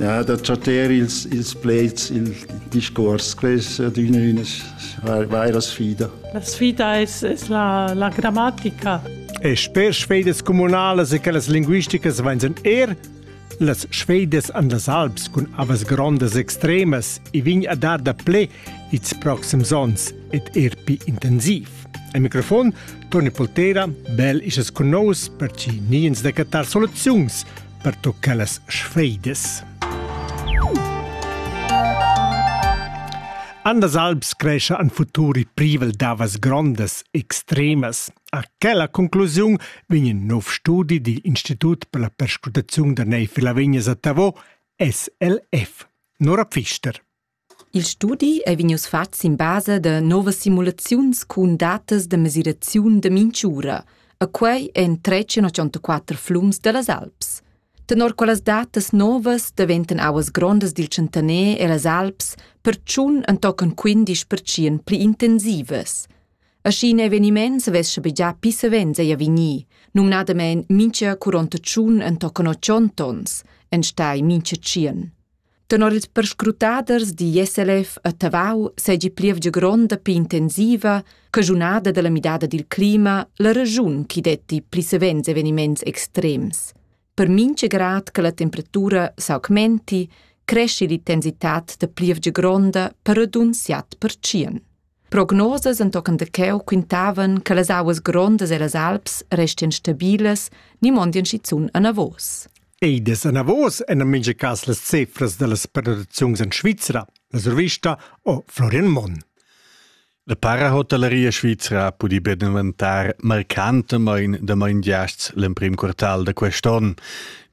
Ja, da chatter ils, ils pleds, il discurs, quest è adüna una vera sfida. La sfida es, es la, la grammatica. E sper sfedas comunalas e quellas linguisticas vainsan er las sfedas an las Alps cun avas grondas extremas e vegn a dar da ple its proxims ons ed er pi intensiv. A mikrofon Toni Poltera, bel isas con nous per ci niens da cattar soluziuns pertocca las sfeidas. Andas Alps crescia an futuri privel davas grondas extremas. A quella conclusiun vegn in nov studi digl Institut per la perscrutaziun da neiv Lavignas a Tavo, SLF. Nora Pfister. Il studi ei vegnius fatgs sin basa da novas simulaziuns cun datas da mesiraziun da mintg'ura e quei en tretg e ottantaquater flums dallas Alps. Tenor quellas datas novas daventan auas grondas dil tschentaner ellas Alps pertschun entochen quindisch pertschien pli intensivas. Aschi in eveniment savess schabegiar pli savens ei vegnir, numnadamein mintga curonta tschun entochen otg ontons, enstagl mintga tschien. Tenor ils perscrutaders digl SLF a Tavau seigi plievgia gronda pli intensiva che giunada dalla midada dil clima la regiun chi detti pli savens eveniments extrems. Per mincha grad che la temperatura s'augmenti, cresci l'intensitat da plievgia gronda per radunsiat per tschien. Prognosas entochen da cheu quintavan che las auas grondas ellas Alps restien stabilas ni mondien schizun anavos. Ei des anavos en a mincha cas las cefras dallas pernottaziuns en Svizra, la survista o Florian Monn. La parahotelleria svizra ha pudì be daventar marcantamain damain giasts l'emprim quartal da quest'onn.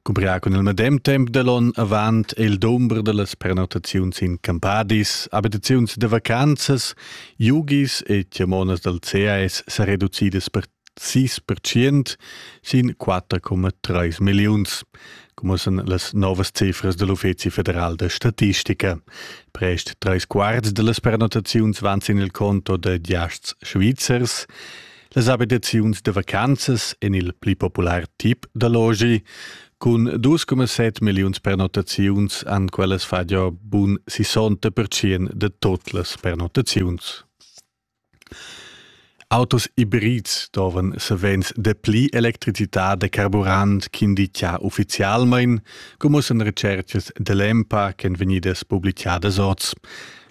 Cubria cun il medem temp da l'onn avant il dumber da las prenotaziuns in campadis, abitaziuns da vacanzas, yogis e tiamonas dal CAS sa reducidas per 6% sin 4,3 milliuns, come san las novas cifras dell Uffizi federal da statistica. Prest tres quarts da las prenotaziuns van sin il conto da giasts svizzers Las abitaziuns da vacanzas en il pli popular tip da logi cun 2,7 milliuns pernottaziuns han quellas fatg bun 60% de tot las pernottaziuns. Autos hybrids doven savens de pli electricità de carburant ch'indica ufficialmein, come san recercas de l'EMPA ch'en vegnidas publicadas oz.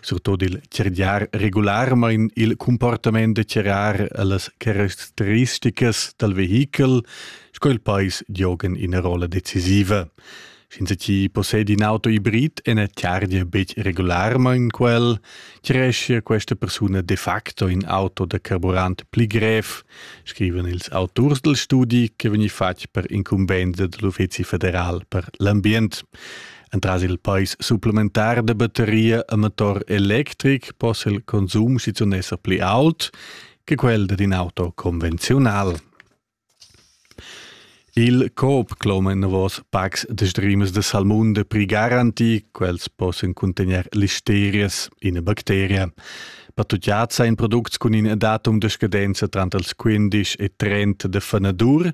surtut il cergiar regularmain il comportament da cerrar las caratteristicas dal vehichel, sco il pais giogan ina rolla decisiva. Senza chi possedi in auto hibrid e na chargia betg regularmain quel, creschia questa persuna de facto in auto da carburant pli grev, scrivan ils auturs del studi che vegni fatg per incumbensa dell'Uffizi federal per l'ambient. Entras il pais supplementar da batteria a motor electric possa il consum schizunt esser pli aut che quel dad in auto convenziunal. Il Coop cloma enavos packs de streams de salmunda pri garanti, quels possan contegner listerias, ina bacteria. Patutiazza in products cun in datum de scadenza trant als 15 e 30 de fanadur,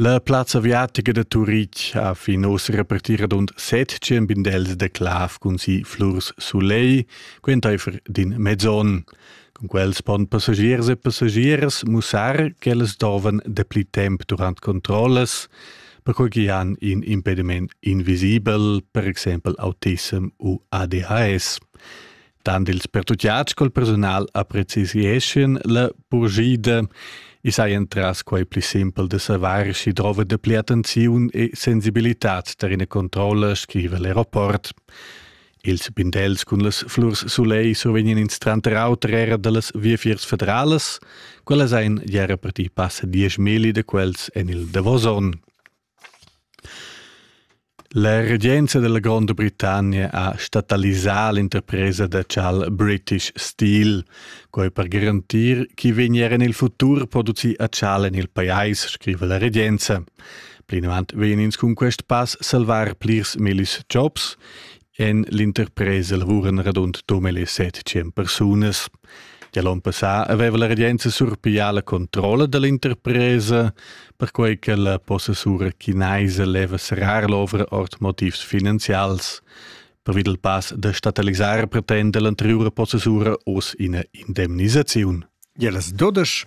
La plazza aviatica da Turitg ha fin oz repartì radund set tschembindels da clav cun si flurs sulegl, quentaifer d'in mezzon. Cun quels pon passagiers e passagiers mussar ch'ellas dovan dapli temp durant controllas, perquai ch'i han in impediment invisibel, per exempel autism u ADHS. Tant ils pertutgads col persunal apprezieschien la purschida. I sai entras quai pli simpel da savar schi drova de pli attenziun e sensibilitad ter ina controlla, scriva l'aeroport. Ils bindels cun las flurs soleil survegnan ins tranter auter era dallas viafiers federalas, quellas ein ja reparti passa diesch mili de quels en il Davoson. La regenza dalla Gronda Britannia ha statalisà l'interpresa da tschal British Steel, quei per garantir ch'i vegnier en il futur producì a tschal en il pajais, scriva la regenza. Plinavant vegn ins cun quest pass salvar plirs millis jobs En l'interpresa lavuran radund dumel e set tschient persunas. Gia l'onn passà aveva la regenza surpiglià la controlla da l'interpresa, perquai che la possessura chinaisa leva serrar l'ovra ord motivs finanzials. Pervi dal pass da statalisar pretenda l'anteriura possessura oz ina indemnisaziun. Ja, das dodesch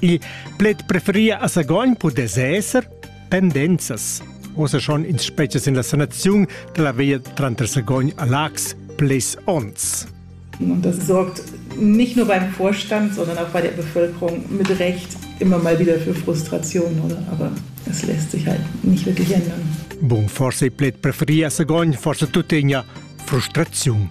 Il pled preferia a Sagogn pudess esser pendenzas. Ossa schon in species in la sanaziun della via tranter Sagogn a Lax ples ons. Und das sorgt nicht nur beim Vorstand, sondern auch bei der Bevölkerung mit Recht immer mal wieder für Frustration, oder? Aber es lässt sich halt nicht wirklich ändern. Bun forse il pled preferia a Sagogn, forse tuttegna frustration.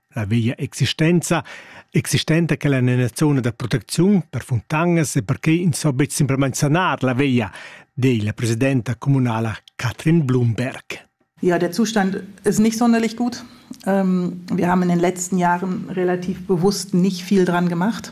La veglia existenza, existenta che la nella zona da protecziun per funtanas e perché ins so betg simplamain sanar la veglia, di la presidenta communala Katrin Blumberg. Ja, der Zustand ist nicht sonderlich gut. Ähm, wir haben in den letzten Jahren relativ bewusst nicht viel dran gemacht.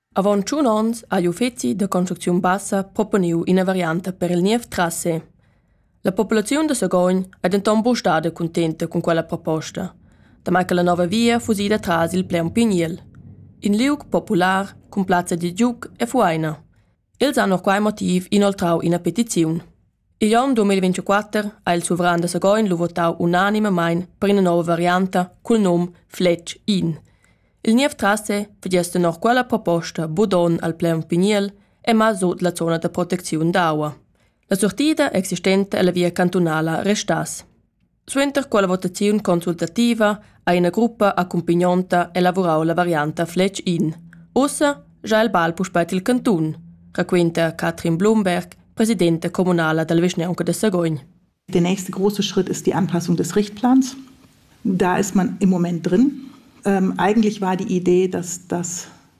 Avon tschun onns ha igl uffeci da construcziun bassa proponiu ina varianta per il niev trassé. La populaziun da Sagogn ei denton buca stada cuntenta cun quella proposta, damai che la nova via fusi ida tras il Pleun Pigniel, in liug popular cun plazza da giug e fueina. Els han per quei motiv inoltrau ina petiziun. Igl onn 2024 ha il suveran da Sagogn lu votau unanimamein per ina nova varianta cul num Fletsch In. Il niev trasse vegess tenor quella proposta budon al plaun pigniel e mal sut la zona da protecziun d'aua. La sortida existenta ella via cantunala restass. Suenter quella votaziun consultativa ha ina gruppa accumpagnonta elavurau la varianta Fletg in. Ussa già il bal puspei til cantun, raquenta Katrin Blumberg, presidenta communala dalla vischnaunca da Sagogn. Der nächste große Schritt ist die Anpassung des Richtplans. Da ist man im Moment drin. Ähm, eigentlich war die Idee, dass das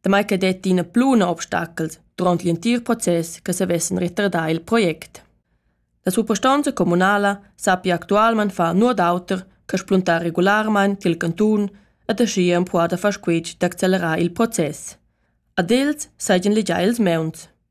damai che detti ina pluna obstacel durant l'entir process che savessen retardar il project. La suprastonza communala sappia actualment far nuot auter che spuntar regularmain til cantun ed aschia empruar da far squitsch d'accellerar il process. Ad els seigien legiai ils meuns.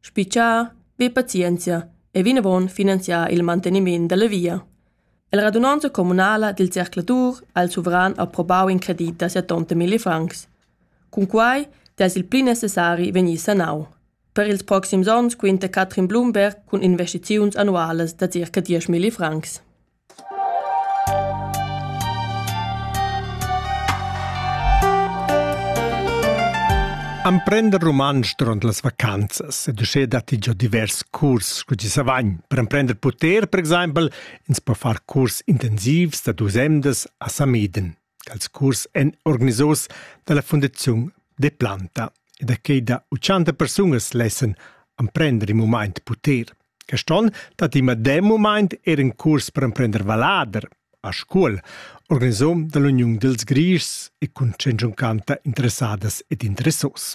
Spitschar, be pazienzia e vinavon finanziar il manteniment dalla via. La radunonza communala dil zercladur ha il suveran approbau in credit da settonta milli francs. Cunquei dess il pli necessari vegnir sanau. Per ils proxims onns quinta Katrin Blumberg cun investiziuns annualas da circa 10 milli francs. Amprender rumantsch durant las vacanzas ed uschè datti già divers curs sco ti savagn. Per emprender puter, per exempel, ins po far curs intensivs da dus emdas a Samiden. dals curs èn organisaus dalla Fundaziun Deplanta e da quei da 80 persunas lessan emprender in mumaint puter. Quest onn dat i medem mumaint er in curs per emprender vallader a Scuol, organisom dall'Uniun dels Grischs e cun 100 canta interessadas ed interessos.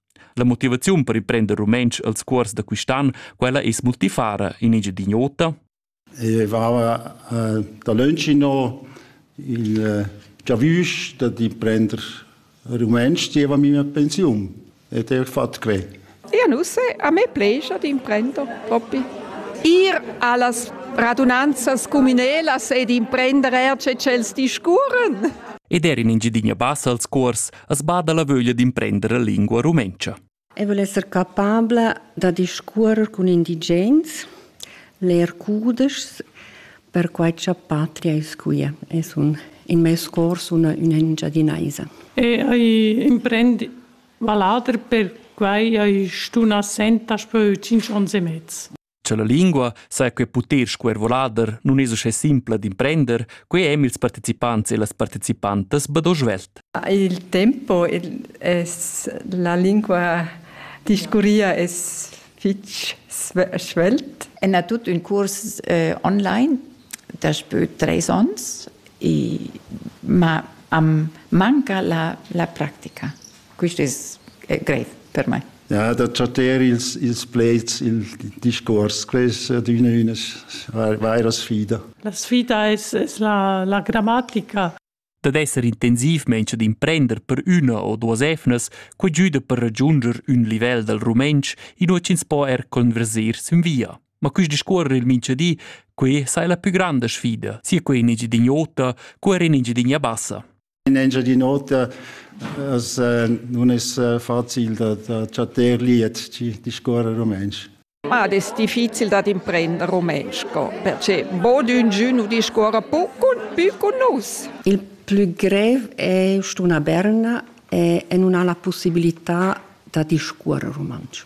La motivaziun per riprender rumentsch als cuors da quist'an, quella es multifara in Engiadin'Ota. Eu vava eh, da Löncino il eh, giavüsch da prender rumentsch dieva mia pensiun ed ho fatto que. Ja, nu se, a me plescha d'imprender propi. Ir a las radunanzas cumünelas ed imprender er ce ch'els discurren. Ed er in Engiadina Bassa als cuors as bada la vöglia d'imprender la lingua rumentscha. E voul esser capabla da discuorrer cun indigens, leer cudeschs, perquai cha patria es quia. Es un, in meis cors una, una Engiadinaisa. E hai imprend valader per quai hai stuna senta spö 5 ons e mezz. Cha la lingua saja que puter sco er volader nun es uschè simpla d'imprender, quai hem ils partecipants e las partecipantas bado svelt. Il tempo es la lingua discurria es fich svelt. En ha tut ün curs eh, online daspö treis ons e ma am manca la, la practica. Quist es eh, grev per mai. Ja, da chatter ils, ils pleds, il discurs, quai es adüna üna vaira sfida. La sfida es, es la, la grammatica. Dad esser intensiv mensch d'imprender per üna o duas efnas, quai giüda per ragiunder ün livel dal rumentsch inua ch'ins po er converser sün via. Ma quist discuorrer il minchadi, quai sai la pü granda sfida, sia quai in Engiadin'Ota co er in Engiadin'a Bassa. In Engiadin'Ota as nun es facil da da chattar liet chi discuorra rumantsch. Ma ad es difficil dad imprender rumantsch co, perche bod ünchün nu discuorra pü cun pü cun nus. Il plü grev è st'una berna e, e nun ha la pussibilità da discuorre rumantsch.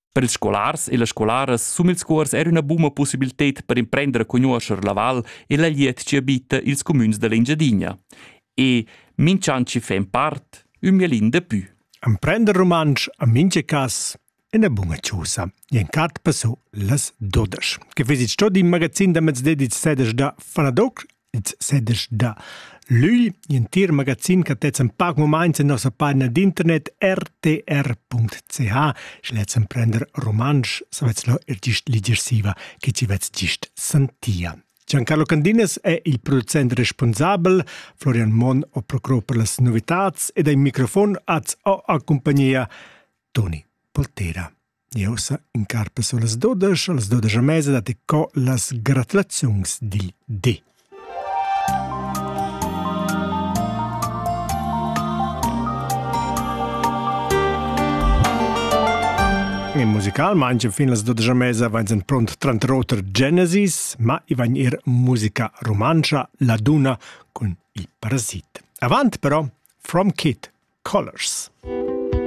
Per ils scolars e las scolaras sum ils cuors era üna buna possibilted per imprender a cugnuoscher la val e la liet chi abita ils cumüns dell'Engiadina. E minch'an chi fa in part, ün mielin de pü. Emprender rumantsch a minche cas ina bunga ciusa. Ien cat passo las dodesch. Che vesit sto din magazin da mezde 17 da Fanadoc ins sedesch da lügl. L'entir magazin che tezzan pac moments en nossa pagina d'internet rtr.ch. Schletzen prender romansch, savetz lo il gist liger siva, che ci vetz gist santia. Giancarlo Candines è il producent responsabel, Florian Mon o procuro per las novitats ed ai microfon az ho a compagnia Toni Poltera. Jeu sa incarpa sulas dudesch, las dudesch e mesa dat co las gratulaziuns dil di. E musicalmain fin las dudesch e mesa vain sen pront trantroter Genesis, ma i vain ir musica rumantscha, la duna cun il parasit. Avant però, From Kid Colors.